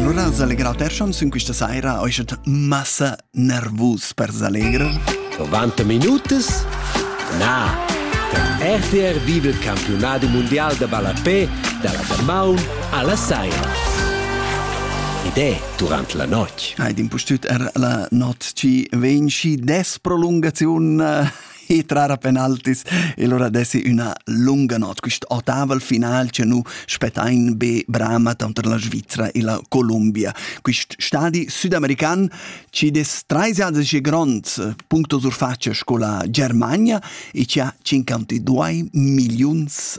Lura s'allegra il chanzun questa saira ho statü massa nervus per s'allegrer. 90 minutas? Na! Der RTR vive il campionat mondial da ballapè dalla damaun alla saira. Id è durant la notg. Hai d'impustüt er la not chi vegn schi des prolungaziun e trara penaltis e lura dessi üna lunga not. Quist otaval final che nu spettain be brama tanter la Svizzera e la Columbia. Quist stadi südamerican ci des treisiadesche gronds puncto surfaccia sco la Germania e ci ha 52 miliuns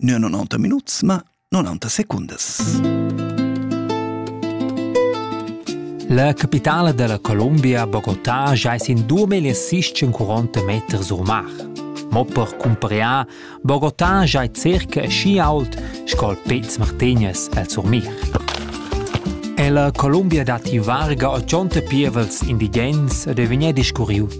Nua 90 minuts, ma 90 secundas. La capitale della Colombia, Bogotà, jais in 2640 meter sur mar. Mo per cumpariar, Bogotà jai circa schi ault sco'l Pez Martinez el sur mir. E la Colombia dati varga 80 pievels indigens ed è vegnè discurriu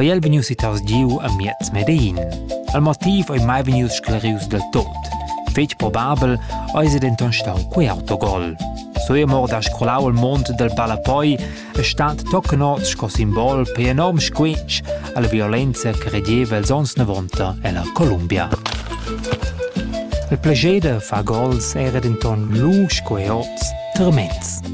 ei el vegnius sittaus giu amiez Medein. Il motiv ei mai vegnius sclarius del tot. Fetg probabel eis ei denton stau quei autogol. Soemor da scrolau il mond del Palapoi e stat toccnots sco simbol per enorm squetsch alla violenza che regeva els ons 90 ella Columbia. Il plegede fa gols era denton lu sco oz, tremends.